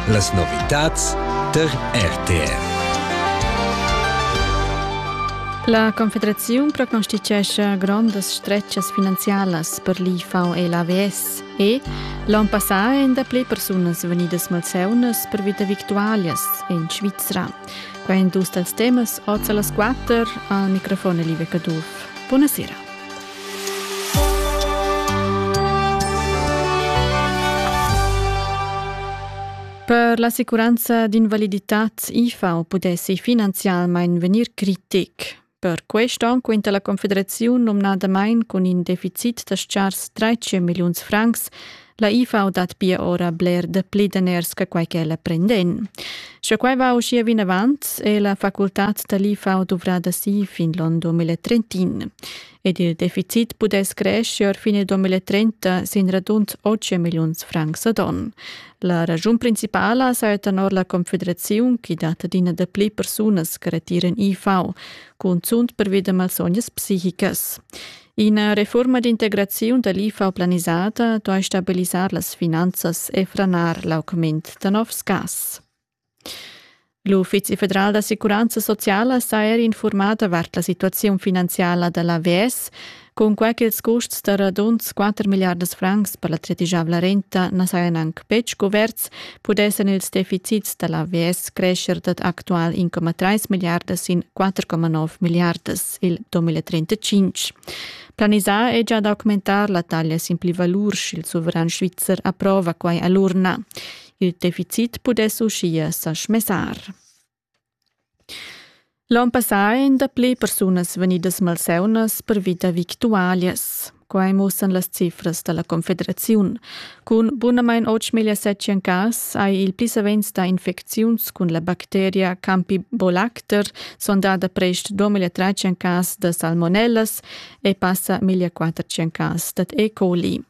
Las novitads tar RTR. La Confederaziun proconstituescha grondas stretgas finanzialas per l'IFAU e l'AVS e l'on passà èn dapli persunas vegnidas malseunas per vita victualias en Svizra. Quai èn dus dals temas oz a las quatter al microfon Live Caduff. Buonasera. Per l'assicuranza d'invaliditad IFAU pudessi finanzialmein vegnir critic. Per quest onn quinta la Confederaziun nomnadamain cun in deficit da stars 13 milliuns francs La IFA dat pia ora bler dapli daners che quai ch'ella prenden. Sche quai va uschia vinavant, è la facultad da l'IFA duvrada si fin l'on 2030. Ed il deficit pudess crescere fine 2030 sin radund 8 milliuns francs ad on. La ragiun principala saja tenor la Confederaziun che dat adina dapli persunas che retiran IFA, cunzunt pervi da malsognas psichicas. Ina refurma d'integraziun da l'IFA planisada duai stabilisar las finanzas e franar l'augment da novs gas. L'Uffizi federal d'assicuranza sociala s'ha er infurmà davart la situaziun finanziala da l'AVS, cunquai ch'ils custs da radunds 4 milliardas francs per la tredigiavla renta na sajan anc betg cuverts, pudessan ils deficits da l'AVS crescher dad actual 1,3 milliardas in 4,9 milliardas. il 2035. Planisà è già d'augmentar la taglia sin pli valur sch'il suveran svizzer approva quai a l'urna. Il deficit pudess uschia sa schmessar. L'on passà èn dapli persunas vegnidas malseunas pervi da victualias. Quai mussan las cifras da la Confederaziun. Cun bunamain 8.700 cas hai il pli savens dà infecziuns cun la bacteria Campibolacter, sondada prest 2.300 cas da salmonellas e passa 1.400 cas dad E. coli.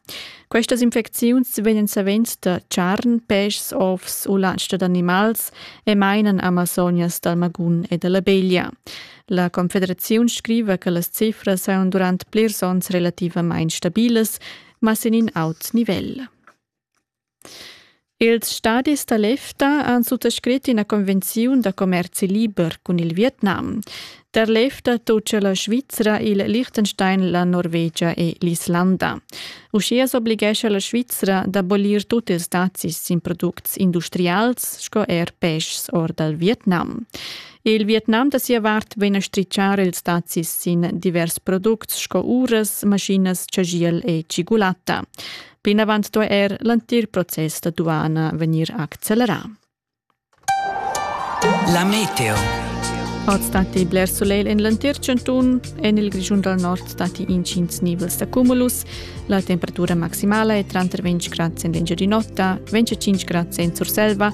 Questas infecziuns vegnan savens da charn, peschs, ovs u latsch d'animals e mainan Amazonias dal magun e da la beglia. La Confederaziun scriva che las cifras saun durant plirs onns relativamain stabilas, ma sin in aut nivel. Ils stadis da l'EFTA han suttascrit ina convenziun da commerzi liber cun il Vietnam. Der l'EFTA toccia la Svizra, il Liechtenstein, la Norvegia e l'Islanda. Uschia s'oblighescha la Svizra d'abolir tut ils dazis sin products industrials sco er peschs or dal Vietnam. Il Vietnam da sia vart vegn a stritschar ils dazis sin divers products sco uras, maschinas, chagiel e cigulatta. Plinavant sto er l'entir process da duana vegnir accelerà. La meteo. Oz datti bler solegl en l'entir chantun. En il Grischun dal Nord datti intgins nivels da cumulus. La temperatura maximala è tranter 20 grad en l'engiadin'Ota, 25 grad en Surselva